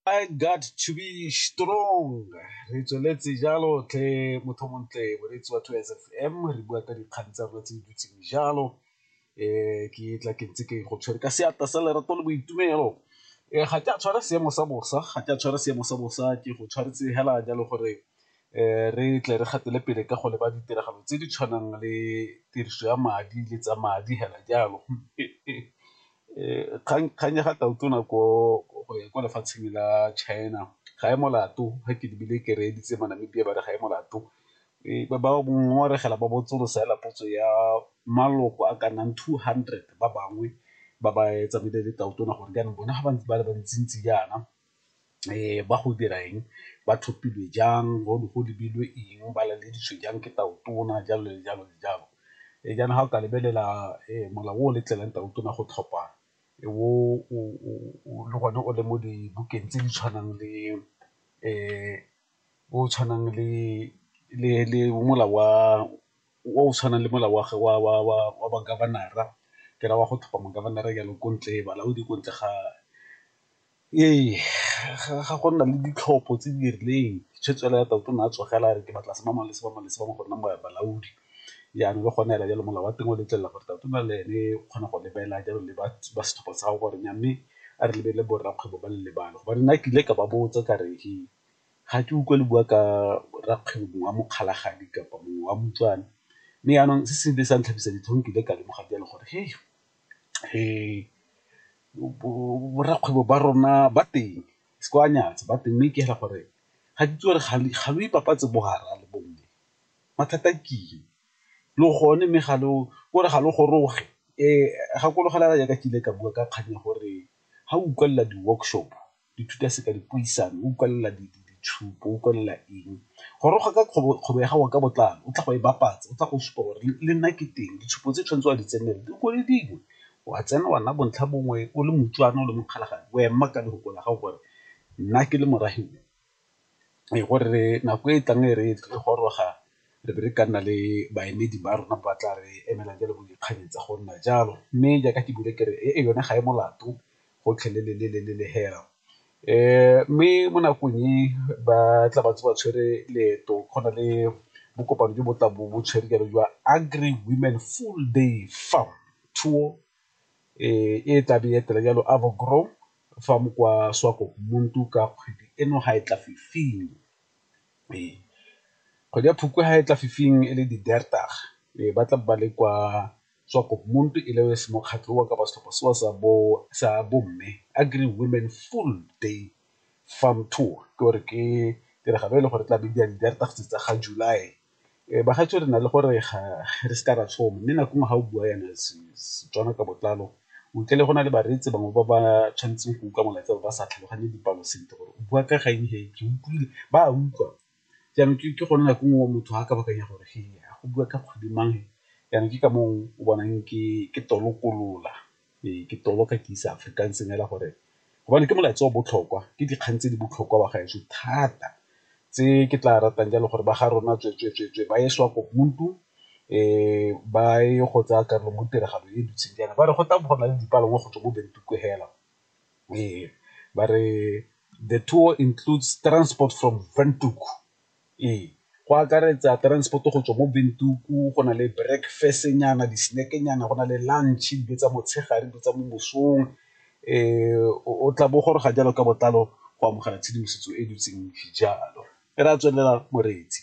I got to be strong re tsweletse jalo tle motho montle moreetsi wa 2 sfm re bua ka dikgang tsa rona tse di dutseng jalo um ke tla ke ntse ke go tshwere ka seatla sa lerato le boitumelo um ga ke a tshwara seemo sa bosa ga ke a tshwara seemo sa bosa ke go tshwaretse hela jalo gore um re tle re gatele pele ka go leba ditiragalo tse di tshwanang le tiriso ya madi le tsa madi hela jalo Kgang ya ga Tautona ko go ya kwa lefatsheng la China ga e molato ga ke lebile ke reeditse mo Namibia ba re ga e molato ba ba ngongoregela ba botsolosa hela potso ya maloko a ka nnang two hundred ba bangwe ba ba tsamaile le Tautona gore jaanong bone ga ba ntse ba le ba ntsi-ntsi jaana. ba go dira eng ba thopilwe jang go ne go lebilwe eng ba laleditswe jang ke tau tona jalo le jalo le jalo. Jaanong ga o ka lebelela molao o letlelang tau tona go tlhopha le gone o le mo dibukeng tse di tshwanang le o tshwanang le molao wa o o tshwanang le molao wa wa governor-ra ke ra wa go tlhopha governor-ra jalo ko ntle balaodi ko ntle ga Ee, ga go nna le ditlhopho tse di rileng tshwetso fela ya tau ne a tsogela a re ke batla sebangwana le sebangwana le sebangwana go nna mo balaodi jaanong le gone fela jalo molao wa teng o letlelela gore tau tona le ene o kgona go lebelela jalo le ba setlhopha sa gago gore mme a re lebelele borakgwebo ba le lebale gobane nna ke ile ka ba botsa ka re he ga ke utlwa le bua ka rakgwebo mongwe wa Mokgalajadi kapa mongwe wa Motswana mme jaanong se se ile sa ntlhabisa ditlhong ke ile ka lemoga jalo gore . borakgwebo ba rona ba teng se ke wa nyatsa ba teng, mme ke ra gore ga ke itse gore ga lo ipapatsa bo garra le bo mme, mathata ke eng? Lo gone mme ga lo ke gore ga lo goroge gakologelwa jaaka ke ile ka bua ka kgang ya gore ga o utlwelela di-workshop ithuta seka dipuisano, o utlwelela ditshupo, o utlwelela eng. Goroga ka kgobo ya gago ka botlalo, o tla go e bapatsa, o tla go supa gore le nna ke teng, ditshupo tse o tshwanetseng wa di tsenela di ko le dingwe, wa tsena wa nna bontlha bongwe o le moutlwana o le mokgalabje, o ema ka lefoko la gago gore nna ke le morafe o. ee gore nako e tlang e re e tle goroga re be re ka nna le baemedi ba rona ba tla re emela jalo bo dikgang tsa go nna jalo, mme jaaka ke buile kere e yone ga e molato gotlhelele hela mme mo nakong e ba tla ba ntse ba tshwere leeto go na le bo kopano jo bo tla bo bo tshwere jalo jwa Agri Women Full Day Farm Tour e tla be e etela jalo Avo Grow fa mo kwa Swakopmund ka kgwedi eno ga e tla fifing. Ee, kgwedi ya Phukwi ga e tla fifing e le di-Diertag ba tla ba le kwa Swakopmund e le se mokgatlho wa kapa setlhopha sewa sa bo sa bomme Agri Women Full Day Farm Tour ke gore ke tiragalo e le gore tla be di a di-Diertag tsa ga July Bagaetsho re na le gore ga re se ka ra tshoma mme nako nngwe ga o bua yana Setswana ka botlalo o utlwa le go na le bareetsi bangwe ba ba tshwanetseng go utlwa molaetsa ba sa tlhaloganye dipalo sentle gore o bua ka ga eng he ke utlwile ba a utlwa. Jaanong ke gone nako nngwe motho ga a ka baakanya gore he go bua ka kgwedi mang he jaanong ke ka moo o bonang ke tolokolola. Ee, ke toloka ke isa Afrikaans fela gore gobane ke molaetsa o botlhokwa ke dikgang tse di botlhokwa ba gaetsho thata tse ke tla ratang jalo gore ba ga rona tsweetsweetswe ba ye SWAPO ba ye go tsaya karolo mo tiragalo e dutseng jaana. Ba re go tla bo go na le dipalangwa go tswa ko Windhoek fela, ee ba re the tour includes transport from Windhoek. Ee, go akaretsa transport-o go tswa mo Windhoek go na le breakfast-nyana, di-snack-nyana, go na le lunch, dijo tsa motshegare, dijo tsa mo mosong o tla bo o goroga jalo ka botlalo go amogela tshedimosetso e dutseng jalo, e re a tswelela moreetsi.